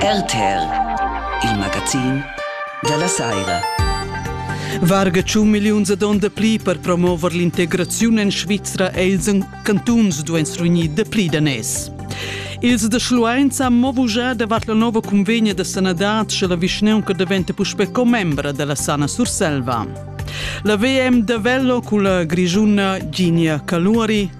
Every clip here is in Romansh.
RTR, il magazin dalla saira. Varga tschun milliuns ad onda pli per promover l'integraziun en Svizra e ils cantuns duan strugnir de pli danès. Ils de Schluenz han mo bugà davart la nova convegna de sanadad sche la vischneunca diventa puspe commembra della Sana Surselva. La VM de Vello cun la grigiuna Ginia Caluari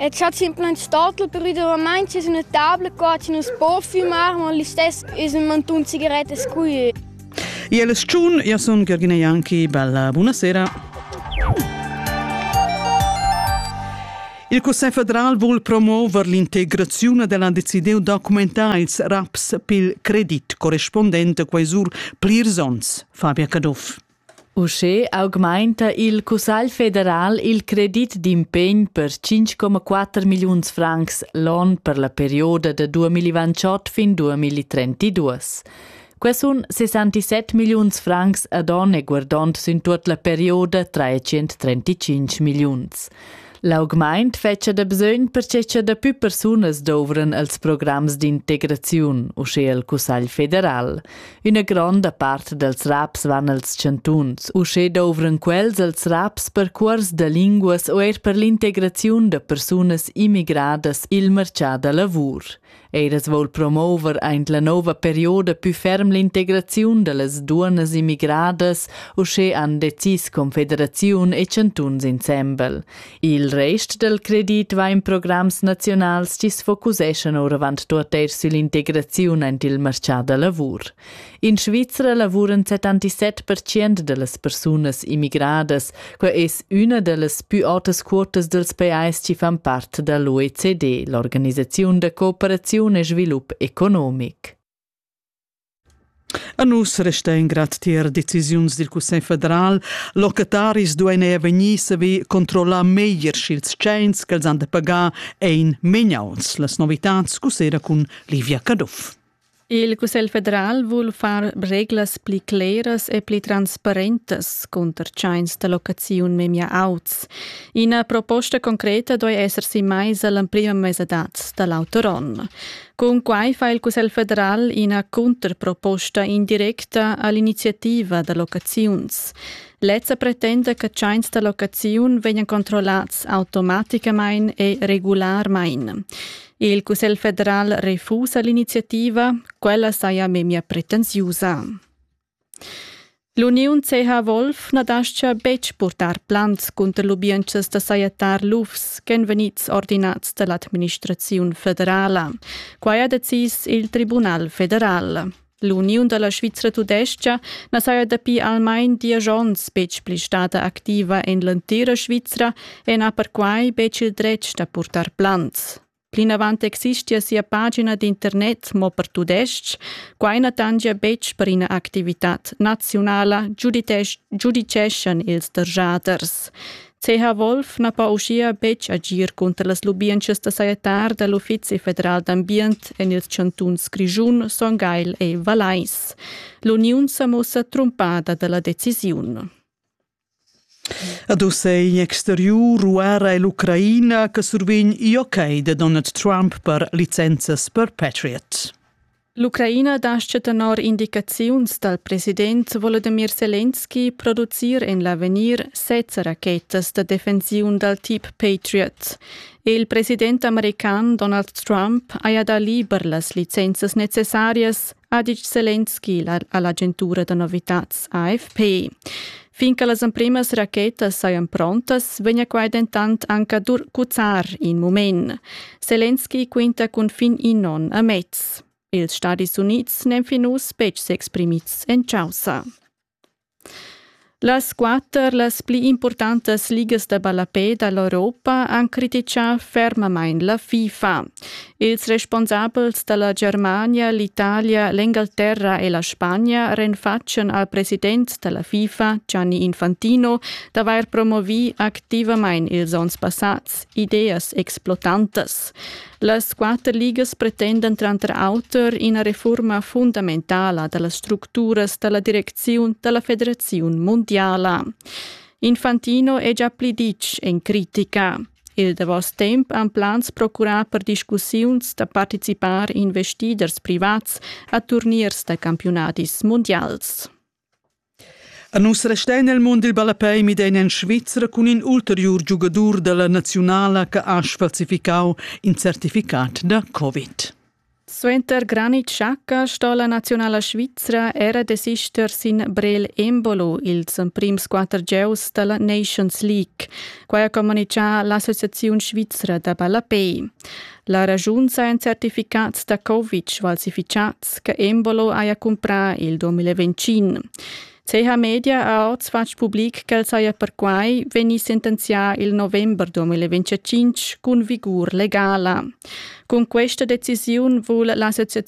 E c'ha simplamain stato prudentamain es üna tabla co chi nu's po fümar, ma listess es ün mantun sigarettas qui. Iel es tschun, io sun Georgina Janki, bella buonasera. Il Cussegl federal vul promuover l'integrazione della decidiu documentar ils raps pil credit corrispondente quai sur plirs onns. Fabia Caduff. Uschè augmainta il Cussagl federal il credit d'impegn per 5,4 milliuns francs l'on per la perioda da 2028 fin 2032. Quai sun 67 milliuns francs ad on e guardond sün tuot la perioda 335 milliuns. L'augmaint fetscha da bisögn perche cha dapü persunas douvran als programs d'integraziun, uschea il Cussagl federal. Üna gronda part dals raps van als chantuns. Uschè douvran quels als raps per cuors da linguas o eir per l'integraziun da persunas immigradas i'l marchà da lavur. Ed es voul promover aint la nouva perioda pü ferm l'integraziun da las duonnas immigradas, uschè han decis Confederaziun e chantuns insembel. Il rest dal credit va in programs nazionals chi's focuseschan oravant tuot eir süll'integraziun aint il marchà da lavur. In Svizra lavuran 77 percent dallas persunas immigradas, quei es üna dallas pü autas quotas dels pajais chi fan part dall'OECD, l'organisaziun da cooperaziun e svilup economic. A nus resta in grad tier decisiuns dil Cussegl federal. Locataris duein era vegnir saver controllar meglier sch'ils tscheins ch'els han da pagar ein megnauts. Las novitads cussera cun Livia Caduff. Il Cussegl federal vul far reglas pli cleras e pli transparentas cunter tschains da locaziun memia auts. Ina proposta concreta doi esser si maisa l'emprima mesadad da l'auter onn. Cun quai fa il Cussegl federal ina cunterproposta indirecta all'iniziativa da locaziuns. Lezza pretenda che tschains da locaziun vegnan controllats automaticamain e regularmain. Il Cussegl federal refusa l'iniziativa, quella saja memia pretensiusa. L'uniun CH Wolf na dascha betg purtar plans cunter lubientschas da sajettar lufs ch'èn vegnids ordinads da l'administraziun federala. Quai ha decis il Tribunal federal. L'uniun da la Svizra tudestga na saja dapi almain diesch onns betg pli stada activa en l'entira Svizra e n'ha perquai betg il dretg da purtar plants. Plinavant existia sia pagina d'internet mo per tudestg. Quai na tangia betg per ina activitad naziunala, giuditeschian ils derschaders. Teha Wolf na po uschia betg agir cunter las lubientschas da sajettar da l'Uffizi federal d'ambient en ils chantuns Grischun, Son Gagl e Valais. L'uniun sa mussa trumpada da la decisiun. Ad ussa è in exteriur ruara e l'Ucraina che survegn joc da Donald Trump per licenzas per Patriot. L'Ucraina dascha tenor indicaziuns dal president Volodymyr Zelensky producir en l'avegnir sezza rachetas da defensiun dal tip Patriot. Il president american Donald Trump haja dà liber las licenzas necessarias, ha ditg Zelensky a l'agentura da novitads AFP. Fin che las emprimas rachetas sajan prontas, vegnia quai dentant anc ad cuzzar in mument. Zelensky quinta cun fin in onn a mez. Ils Stadis Unids n'èn fin uss betg s'exprimids en chaussa. Las quatter las pli importantas ligas da ballapè da l'Europa han crititgà fermamain la FIFA. Ils responsabels dalla Germania, l'Italia, l'Engalterra e la Spagna renfatschen al president dalla FIFA, Gianni Infantino, d'avair promovi activamain ils onns passats ideas explotantas. Las quatter ligas pretendan tranter auter ina reforma fundamentala dallas structuras dalla direcziun dalla federaziun mundiala. Infantino è già pli ditg en critica. Il davos temp han plans procurà per discussiuns da participar investiders privats a turniers da campiunadis mundials. A nus restein el mund il ballapei midein en Svizra cun in ulteriur giugadur dalla naziunala che ha sfalsificau in certificat da Covid. Suenter granit schacca sto la naziunala svizra era desister sin Brel Embolo, ils emprims quatter gieus dalla Nations League. Quai ha communitgà l'Associaziun svizra da ballapei. La ragiun sajan certificats da Kovic falsificats che Embolo haja cumprà il 2020. Teha Media ha ord fatg public ch'el saja perquai vegni sentenzià il november 2025 cun vigur legala. Cun questa decisiun vul l'associaziun